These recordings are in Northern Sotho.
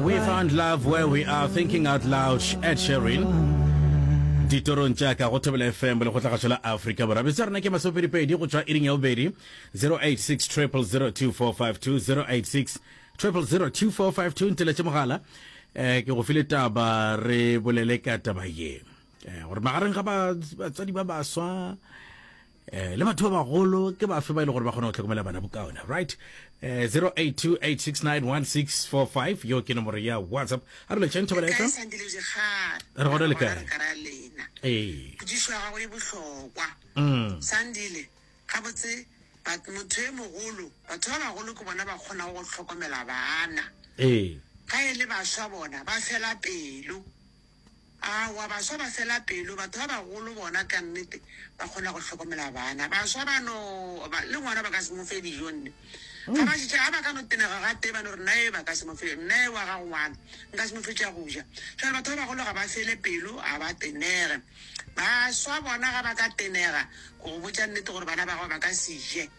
We found love where we are thinking out loud Ed Sheeran ditorong tša ka go thobela fm le kgotlagašo la afrika borwa bese rena ke masopedipedi go tšwa iring ya bobedi 086 002452 086 002452 nteletše mogala um ke go file taba re bolele ka taba ye um gore magareng ga batswadi ba baswa eh le batho ba bagolo ke ba fe ba ile gore ba kgona go tlhokomela bana bokaone right eh 0828691645 yo ke nomoro ya whatsapp a re letšeng thobela fm re gona le kae ee pudišo ya gago e bohlokwa mm. sandile gabotse motho e mogolo batho ba bagolo ke bona ba kgona go tlhokomela bana ee ga e le baswa bona ba fela pelo Aowa, baswa ba fela pelo. Batho ba bagolo bona ka nnete ba kgona go hlokomela bana. Baswa ba no, ba, le ngwana ba ka se mo fe dijo nne. Ga ba šetše, ga ba ka no tenega gatee ba no re, Nnaye ba ka se mo fe, nnaye wa gago ngwana, nka se mo fe tša go ja. Jwale batho ba bagolo ga ba fele pelo, ga ba tenege. Baswa bona ga ba ka tenega go go botša nnete gore bana ba gago ba ka se je.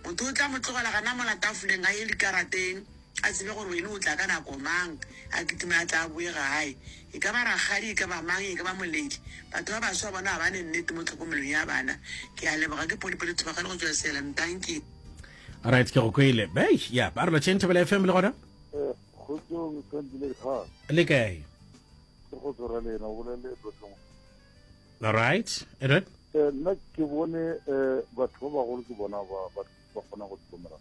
Motho o tla mo tlogela gana mola tafoleng a ye dikarateng, a tsebe gore wene o tla ka nako mang, a kitime a tle a boe gae. E ka ba rakgadi, e ka ba mang, e ka ba moledi, batho ba baswa bona ga ba ne nnete mo tlhokomelong ya bana. Ke a leboga. Ke Polly Polly Thubagale go tšwa Salem. Dankie. Alright, ke go kwele. Beish, ya, ba re lo tšheng Thobela FM le gona. Eh, kgotsong Sandile Khan. Le kae? Ke kgotso ra lena o bolele tlotlong. All right. E re? Eh nna ke bone eh batho ba bagolo ke bona ba ba ba kgona go tlhokomela.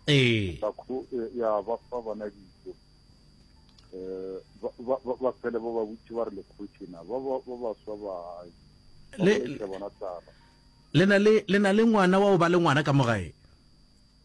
Eh. Ba kho eh, ya ba fa bana dijo. Eh ba ba ba fele ba ba butse ba re le khotshina ba ba ba ba swa ba le bona tsaba. Le na le le na le ngwana wa o ba le ngwana ka mogae.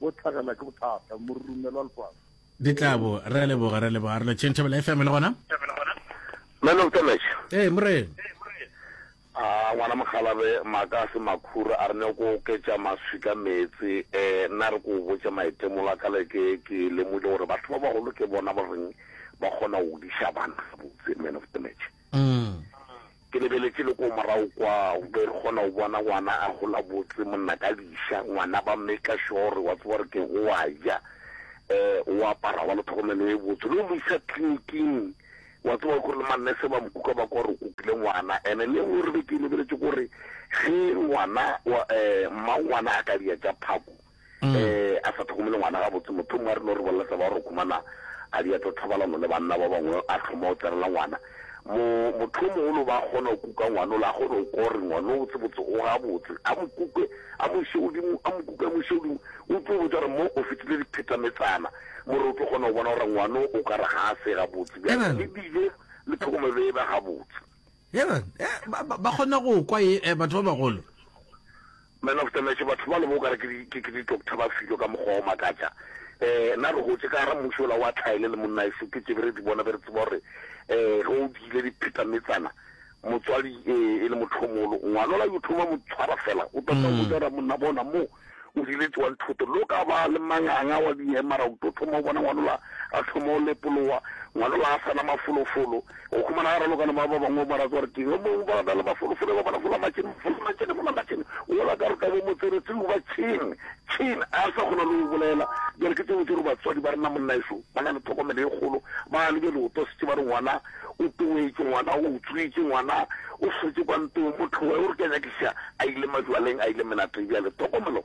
bo tlhagelwa ke bothata morumelwa lefase di tlabo re a leboga re a leboga re lo changeable fm le gona man of damage ee morena a ngwana mogalabe maaka a se makhura a re ne ko oketša maswi ka meetse um nna re ko botša maitemolo a ka leke ke lemogile gore batho ba bagolo ke bona ba reng ba kgona go diša bana botse man of damage Ke lebeletše le ko morago kwa, nke re kgona go bona ngwana a gola botse, monna ka diša, ngwana ba maker sure wa tseba gore ke go wa ja, um o apara, wa le tlhokomelo e botse, le go mo isa tleliniking, wa tseba gore le mannese ba mo kuka ba kwa gore o kukile ngwana. And-e le engwe re be ke e lebeletše kore ge ngwana wa, um mmangwana a ka diya tša phako, um a sa tlhokomele ngwana gabotse motho mongwe a rile o re bolela taba gore khumana a di ato thobalano le banna ba bangwe a tlhoma o tsenela ngwana mo motho mogolo ba kgona go kuka ngwana o le a kgone go kore ngwana o tsebotse o gabotse a mo kuke a mo ise godimo a mo kuke a mo ise godimo o tlo botsa gore mo o fetile diphetametsana more o tlo kgona go bona gore ngwana o ka re ga a se gabotse bjang le dile le tlhokomelo e ba gabotse eh, ba kgona go kwa eh, batho ba bagolo Man of the match, batho bale bo okare ke di ke ke di doctor ba filo ka mokgwa o makatša. Eh na re hotše ka gara mmuši ola wa tlhaele le monnaeso ke tše be re di bona be re tseba gore eh ge o diile di pheta metsana motswadi eh e le motho o molo ngwanola yo thoma mo tshwara fela o tota o botsa ra monna bona mo o di le tswang thoto lo ka ba le manganga wa di emara o tota mo bona ngwanola a thoma o lepolowa ngwanola a sana mafolofolo O humana ga raloka le bao ba bangwe, ba raka gore ke yo mongwe, ba na le mafolofolo, ba bona fola matšhene, fola matšhene, fola matšhene. Wola ka ruta bo motsebetseu ba Chin, Chin a sa kgona le go bolela. Bjale ke tsebe tše re batswadi ba rena monnaešo ba na le tlhokomelo e kgolo, ba lebe leoto setse ba re ngwana o toetše, ngwana o utswitše, ngwana o sotše kwa ntong, motlhoe o re ke a nyakiša, a ile majwaleng, a ile menateng. Bjale tlhokomelo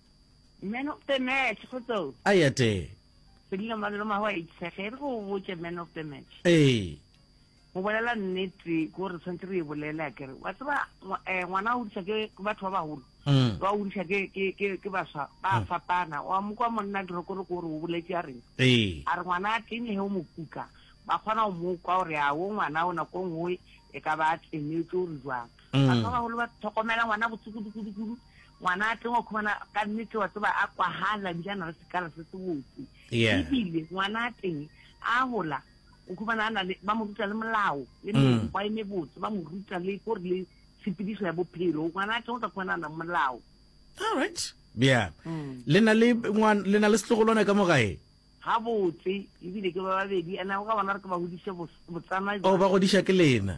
Man of the match, go tso. A ya te. Sedilo malolo ma wa itshege re go botse man of the match. Eh. Go bolela nnete go re tshwantse re e bolela ke re wa tseba eh, ngwana o disa ke batho ba baholo. Mm. Wa o disa ke ke ke ke baswa ba mm. fapana. Wa mo kwa monna di roko re go re o boletse a re. Eh. A re ngwana a tene he o mo kuka. Ba kgona go mo kwa gore a o ngwana o nako nngwe e ka ba tsenetse o re jwang. batho ba bagolo ba tlhokomela ngwana botse kudu-kudu-kudu ngwana a tleng wa khumana ka nnete wa tseba a kwagala ebile a na le sekala se se botse ebile ngwana a teng a gola o khumana a na le ba mo ruta le molao le mm. mekgwa e mebotse ba mo ruta le ko re le tshepediso ya bophelo ngwana a teng o tla khumana a nang molao all right yeah mm. le na le ngwana le na le setlogolwana ka mo gae ga botse ebile ke ba babedi ana o ka bona re ke ba godise botsana o oh, ba godisa ke lena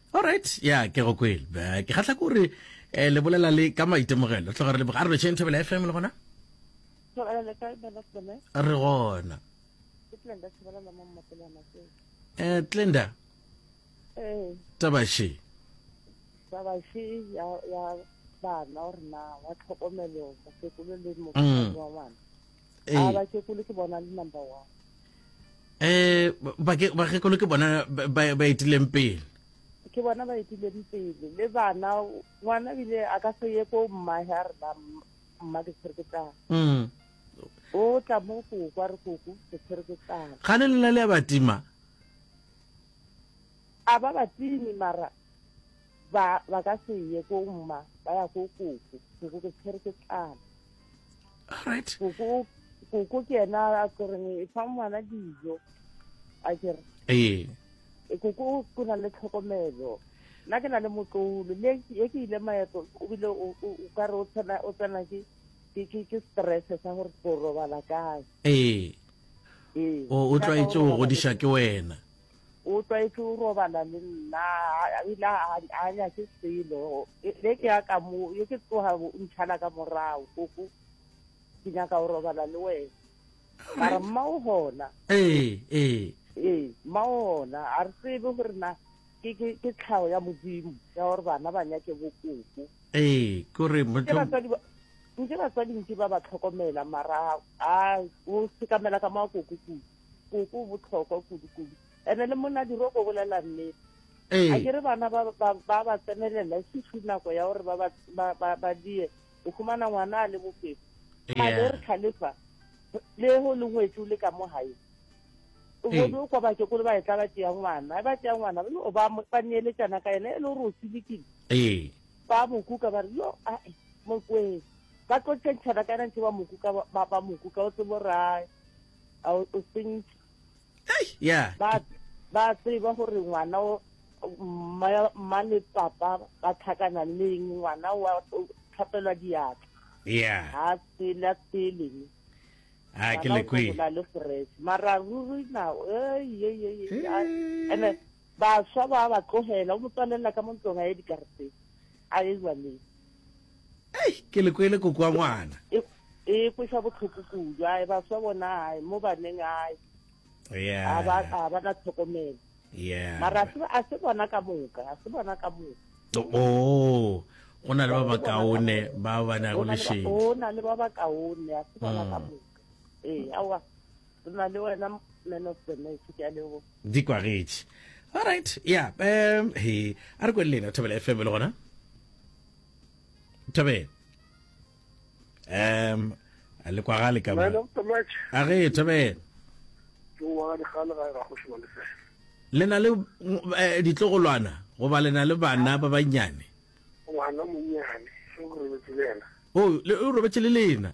Alright, ya ke go kwele. Ba ke khatla gore eh le bolela le ka maitemogelo. Tloga re le bogare tšhe nthabela FM le gona. Tlogela le kae bana tsone? Re gona. Ke tlenda tsebela la mo mmapela matse. Eh Tlenda, Eh, tabashe. baba she ya ya bana or na wa tlhokomelo mosekolo le Mm. mokgwa wa ngwana. a ba kekolo ke bona le number one eh ba ke ba ke ke bona ba ba itileng pele ke bona ba itileng pele le bana ngwana bile a ka se ye ko mma ha re ba mma ke tshwere ke tla mm o tla mo go kwa re go go ke tshwere ke tla ga le le le ba tima a ba ba timi mara ba ba ka se ye ko mma ba ya go go go ke tshwere ke tla right koko koko ke yena a tsoreng e fa ngwana dijo a kere ee e koko o na le tlhokomelo nna ke na le motlolo le e ke ile maeto o bile o ka re o tsena o tsena ke ke ke ke stress sa gore go robala kae ee ee o tlwaetse go godiša ke wena o tlwaetse o robala le nna ebile a nyake selo e, le ke ya ka mo ye ke tloga o ntšhala ka morago koko ke nyaka go robala le wena ka re mma o gona ee ee ee mma o gona a re tsebe gore na ke tlhago ya modimo ya gore bana ba nyake bokoko ee kore nke batswadi nke ba ba tlhokomela mara a o sekamela ka makoko kudu koko botlhokwa kudu-kudu ene le monadiro go bolela nnete a ke re bana ba ba tsenelela e se tlhu nako ya gore ba die o khumana ngwana a le bofefo male re tlhalefa le go le ngwetsi o le ka mo gae o bone o kwa bake kole ba e tla ba tea ngwana e ba tea ngwana o ba ba neeletsana ka ene e le gore o tsilekile ba mo kuka ba re yo a mokweng ba tlo tšentšhana ka ena ntse ba mo kuka ba mo kuka o tsebo rae a o tsentse Hey, yeah. ba ba tseba gore ngwana o mma- mma le papa ba tlhakana le eng ngwana wa o tlhapelwa diatla Yeah. ga a tsele a tseleng Ah, ke lekwe. na le fresh mara ruri na eyeyeye Eh. ene baswa ba ba tlogela o mo tswalela ka mo ntlong a ye dikareteng a ye jwaneng Ei, ke le kwele koko wa ngwana. E, e kweša bohloko kudu. Ai, baswa bona, ai, mo baneng, ai. Yeah. A ba, a ba na tlhokomelo. Yeah. Mara a se, a se bona ka moka, a se bona ka moka. Oh, go na le ba ba kaone ba ba nago lešedi. Go na le ba ba kaone, a se bona ka mm. moka. Ee, aowa, re na le wena man of the match, ke a leboga. di kwagetše alright ya um he a re kwele lena thobela fm le gona thobela um a le kwagale ka a ge thobela le na le eh, ditlogolwana goba le na le bana ba bannyane ngwana monnyane o robetse le lena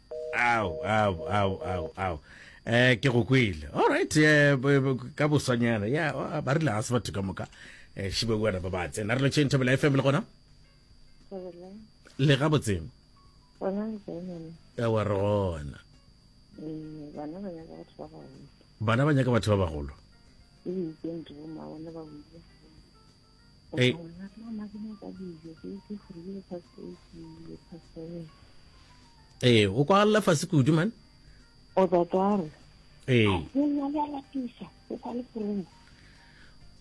Ao, ao, ao, ao, ao. Eh, ke go kwele. All right, eh, b- b- ka boswanyana. Ya, ah, ba rile ga se batho ka moka. Eh, šibe o ba ba tsena. Re lo tšhentšha bela FM le gona. Thabela. Le ga botseng. Bona le kae mama? Ya wa re gona. Eh, bana ba nyaka batho ba baholo. Bana ba nyaka batho ba bagolo. Ebile ke ntho bo mma bona ba buile. Hey. ee o kwagalela fase kudu man o tatare ee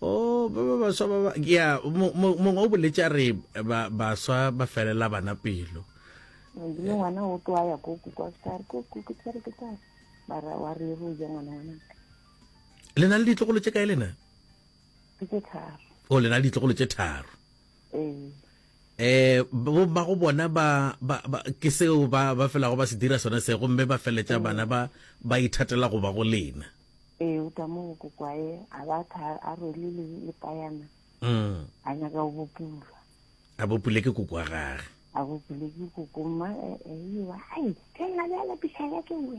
o ba ba baswa ba ya mongwe o boletse a re baswa ba felela bana pelo le ngwana o tlo ya ko kukwa star ko kuku tsere ke tsa bara wa re ro ja ngwana ngwana le na le ditlogolo tse kae lena Ke tše tharo. O le na le ditlogolo tše tharo. Ee. Eh bomma go bona ba ba ba ke seo ba ba felago ba se dira sone se gomme ba feletša bana ba ba ithatela go ba go lena. Ee o tla mo go kwae a ba tha a rwele le le payana. Mm. A nyaka go bopulwa. A bopule ke koko wa gage. A bopule ke koko mma e e wa ai ke nna le ala pisa ya ke we.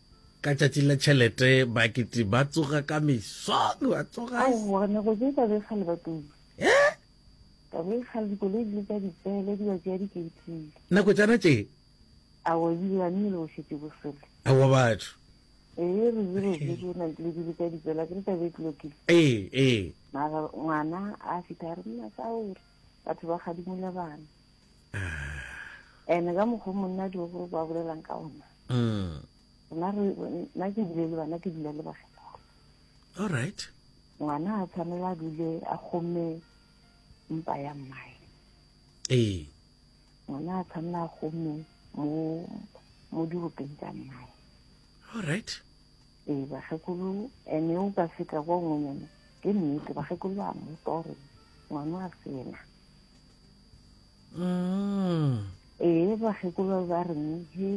Ka tšatši la tšhelete bakiti ba tsoga ka mesong ba tsoga aowa ne go tse ka bekgale ba tuba eh? ka bekgale dikoloi di le tsa dipele di ba tšea dikeitile nako tšana tše aowa ebile ba nne le go šetse bosele aowa batho ee re dire bile o na le dilo di le tsa dipele a ke re tla be e tlokile ee ee mara ngwana a fitha a re nna sa ore batho ba gadimola bana ene ka mokgwa monna di gore ba bolelang ka ona mm. nna ke dule le bana ke dula le bakgekolo all right ngwana a tshwanela a dule a kgomme mpa ya mmae ee ngwana a tshwanela a kgomme mo mo dirupeng tsa mmae all right ee bakgekolo ene o ka feta kwa ngwenyana ke nnete bakgekolo ba mmuta gore ngwana a sena mm. ee bakgekolo ba re ge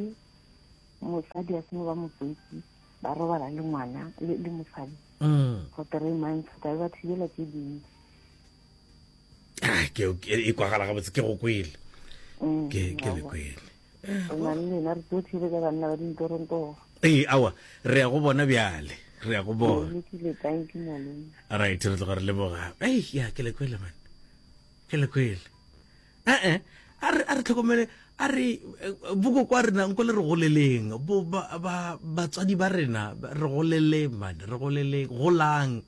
motsadi a seno ba motswetsi ba robala le ngwana le mosadi mm. for three months ka ba thibela tse dintsi ah, e kwagala gabotse ke go kwele mm, ke le kwele lena re tso thibela banna ba dintorontogo ee awa re ya go bona bjale re ya go bona right re tloga re leboga ei ya ke le kwele mane ke le kwele ee a re a re tlhokomele a re eh, boko kwa rena nko le re goleleng bo ba- ba- batswadi ba rena ba- re goleleng mane re goleleng golang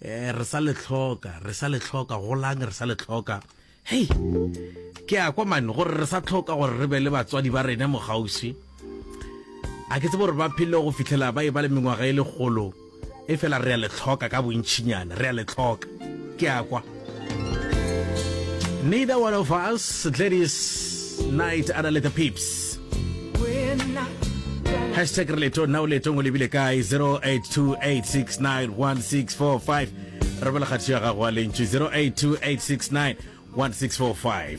eh re sa le tlhoka re sa le tlhoka golang re sa le tlhoka hei ke a kwa mane gore re sa tlhoka gore re be le batswadi ba rena mogauswi a ke tsebo gore ba phele go fitlhela ba e ba le mengwaga e legolo e fela re a le tlhoka ka bontšhinyana re a le tlhoka ke a kwa neither one of us gladys night ana le the peeps hashtag re leto nna o letong o lebile kae 0828691645 re bela kgatho ya gago a lentšu 0828691645